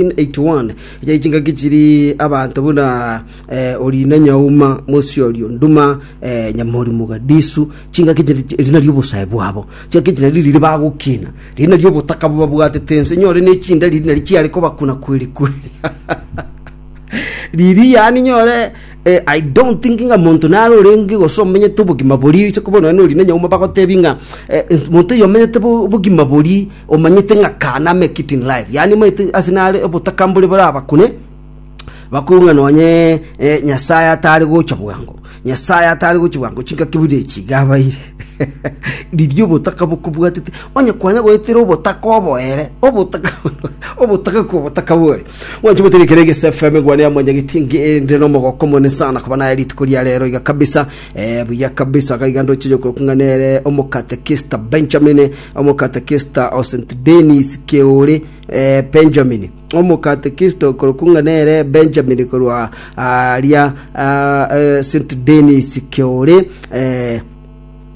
1981 ya chingaki chiri abanto buna eh, orina nyauma mosiorio nduma eh, nyamorimo gadisu chingaki chiri erina riobosae bwabo chingaki chiri nariri riri bagokina riri nario obotaka bobabwatete ense nyore nechinda riri nari chiare kobakuna kweri kweri riri yani nyore eh, i don't think nga monto nare orenge gose omenyete obogima bori ase kobono nori na nyauma bagotebi nga eh, monto oyo omenyete bo- obogima bori Omanyete ng'a kana ame ekiti in life, yaani omanyete ase nare obotaka mbori borabakune, bakwigwe ng'a nonye eh, Nyasae atare gocha bwango, Nyasae atare gocha bwango, chingaki buna echi iga abaire. Riria obotaka bokobwatete, onye kwanya goetera obotaka oboere, obotaka obotaka kwa obotaka bore. Mwanche moteri kere gese FM ngwane ya mwanyageti ngende no mogoko mone sana kuba naye rituko ria rero iga kabisa. Eh, buya kabisa gaiga ndoche yokoro kung'anere omokatekista Benjamin Omokatekista o St. Denis Keori Benjamin, omokatekista okorokwa ng'a nere Benjamin korwa aria St. Denis Keori,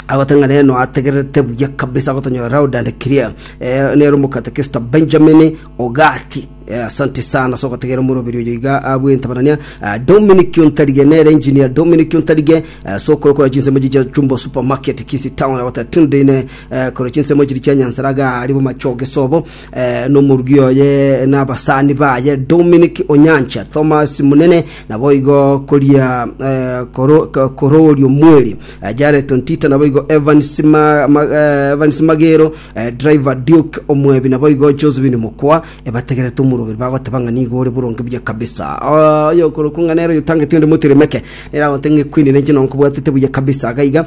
agoteba ng'a nere noategererete buya kabisa agotonyora loud and clear. Eh, nere omokatekista Benjamin Ogati. Eh, asante sana so gotegerera omoroberi oyo iga abwe ntabanania Ah, Dominic Ontarige nere engineer Dominic Ontarige eh, so korokora chinsemo chicha chumbo supermarket Kisi town agoteba tunde ine eh, korwa chinsemo chiri chia nyansara gari bomachogesobo eh, nomorugi oye na abasani baye Dominic Onyancha Thomas Munene nabo igo koria eh, koro- ko- korori omweri eh, Jared Ontita nabo igo Evans Ma- Ma- eh, Evans Magero eh, driver Duke Omwebi nabo igo Josephine Mokwa ebategerete omorogeri bagoteba ng'a nigo ore boronge buya kabisa Ah, oyo okorokwa ng'a nero oyotangete onde moteremeke neragote ng'a ekwini nenche nonkobwatete buya kabisa gaiga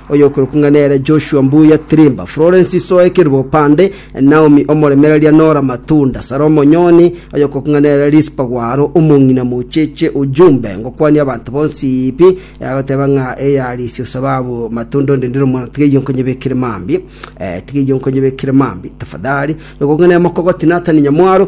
Oyokorokwa ng'a nere Joshua Mbuya Tirimba, Florence Isoe Kerubopande, Naomi omoremereria Nora Matunda, Sarah Omonyoni, oyokorokwa ng'a nere Rispa Gwaro, omong'ina mocheche Ujumbe, ngokwania abanto bonsi pi, agoteba ng'a eyarisie osababu Matunda onde ndire omwana tiga eyio nkonyebekere mambia, eh, tiga eyio nkonyebekere mambia, tafadhali, oyokorokwa ng'a nere Mokogoti Nathan Nyamwaro,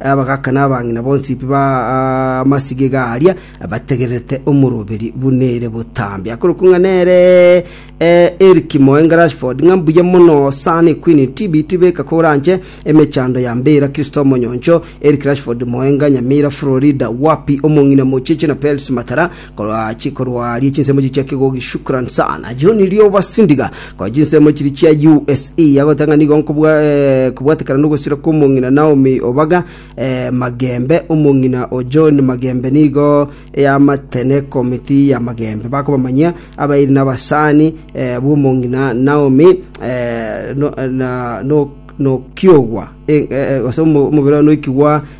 Abagaka na abang'ina bonsi b'amasigega aria bategererete omoroberi buna ere botambe, akorokwa ng'a nere Eric Moenga Rashford, ng'a mbuya mono sana ekwini TB tibeka koranche emechando ya mbira Kristo Omonyoncho, Eric Rashford Moenga, Nyamira, Florida, Wapi, Omong'ina Mocheche na Pels Matara, Korwa chikorwa rie chinsemo echi chia kegogi shukran sana John Rioba Sindiga korwa chinsemo chiri chia USE yagotanga nigo nkobwa eh, kobwatekana nogosira kwa omong'ina Naomi Obaga eh, Magembe omong'ina o John Magembe nigo eyamatene komiti ya Magembe bakobamanyia abairi na abasani eh, bw'omong'ina Naomi eh, no, na, no, nokiogwa eh, eh, gose omo- omobere noikigwa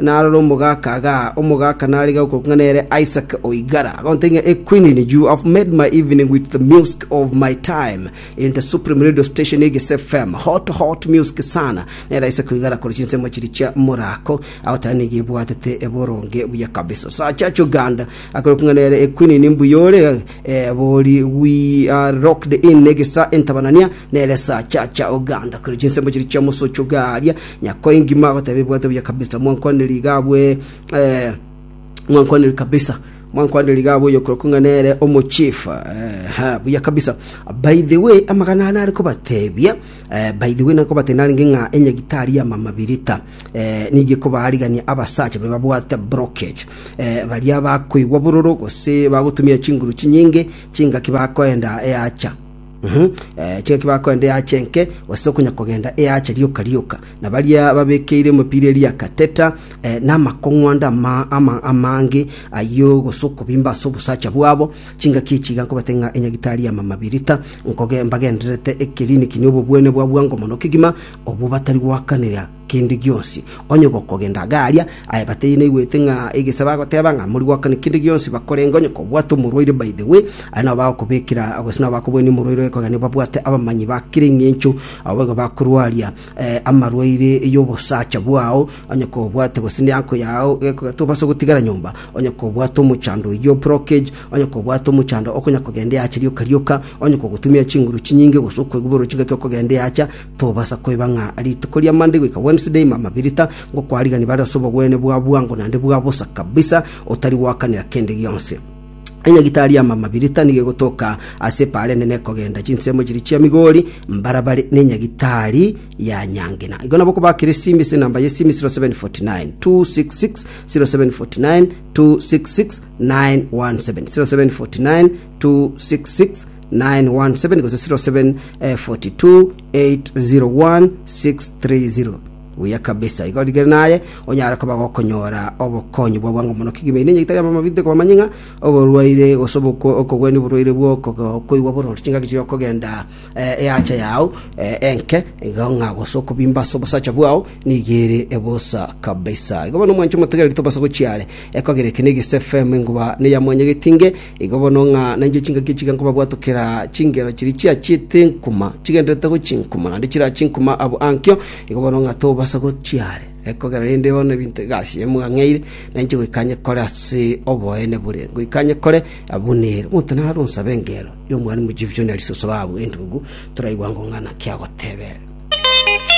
Naroro omogaka agaa, omogaka narige okorokwa ng'a nere Isaac Oigara, agontebia ng'a, Equinini, you have made my evening with the music of my time in the supreme radio station Egese FM, hot hot music sana. Nere Isaac Oigara akore chinsemo chiria chia morako, agoteba nigo ebwatete boronge buya kabisa. Sachacho Ganda, akorokwa ng'a nere Equinini, mbuya ore, eh, bori we are locked in Egesa entabanania, nere Sachacha Oganda, akore chinsemo chiria chia mosocho garia, Nyakoinki mwagoteba ebwato bia kabisa, mwankwanerie iga abwe, eh, mwankwanerie kabisa mwankwanerie iga abwe oyokorokwa ng'a nere omochief eh, ha, buya kabisa by the way amagana ane are kobatebia eh, by the way nakobatebia narenge ng'a enyagitari ya mama birita eh, nigo ekobaarigania abasacha baria babwate brockage eh, baria bakoigwa bororo gose bagotumia chinguru chinyinge chingaki bakoenda eacha Tiga kebakogenda eaache enke, gose okonya kogenda eaache rioka rioka, na baria babekeire emepira eria kateta namakong'wanda amange ayio, gose okobimba ase obosacha bwabo. Chingaki echi iga nkobate ng'a enyagitari ya mamabirita mbagendererete ekerini kinya obobwene bwa bwango mono kegima, obwo batari goakanera kende gionsi, onye gokogenda iga aria, aye bataiyo naigwete ng'a egese bagoteba ng'a mori goakana kende gionsi bakorenge onye kobwate omorwaire by the way, aye nabo bagokobekera gose nabo bakoboenia omorwaire oye kogania babwate abamanyi ba kera eng'encho, abo boigo bakorwaria eh, amarwaire y'obosacha bwao, onye kobwate gose neanko yao gekoga tobasa gotigara nyomba, onye kobwate omochando oyio blockage, onye kobwate omochando okonya kogenda eacha rioka rioka, onye kogotumia chinguru chinyinge gose okoigwa bororo chingaki okogenda eacha, Tobasa koeba ng'a rituko ria Monday goika Wednesday mamabirita, ngokwariganie bare ase obogwene bwa bwango naende bwa bosa kabisa, otari goakanera kende gionsi. Enyagitari ya mamabirita nigo egotoka ase epaara enene ekogenda chinsemo chiria chia Migori, mbarabare n'enyagitari ya Nyangena. Igo nabo kobakire esimi ase enamba y'esimi 0749 266 0749 266 917 0749 266 917 gose 0742801630 buya kabisa igo rigere naye onyare koba gokonyora obokonyi bwa bwango mono kigima ine nyegitari amamabite koba manying'a oborwaire gose oboko- okogwenia oborwaire bwo okogo- okoigwa borori chingaki chiria okogenda eh, eacha yao eh, enke iga ng'a gose okobimba ase obosacha bwao nigo ere ebosa kabisa igo bono omwancho omotegereri tobasa gochiare ekogera eke na egese fm enguba neyamwanyegetinge Igo bono ng'a nainche chingaki echi nkobabwatokera chingero chiria chiachiete nkuma, chigendererete gochia nkuma, naende chirachie nkuma abwo ankio, igo bono ng'a tobasa gochia are. Ekogera rende bono ebinto iga ase yaye mwang'eire, nainche goika nyekore ase oboene bore. Ngoika nyekore abwo nere. Omonto nare onsabe engero y'Omwalimu Jesu John Alice Osobabu entugugu, toraigwa ng'o ng'a naki agotebete.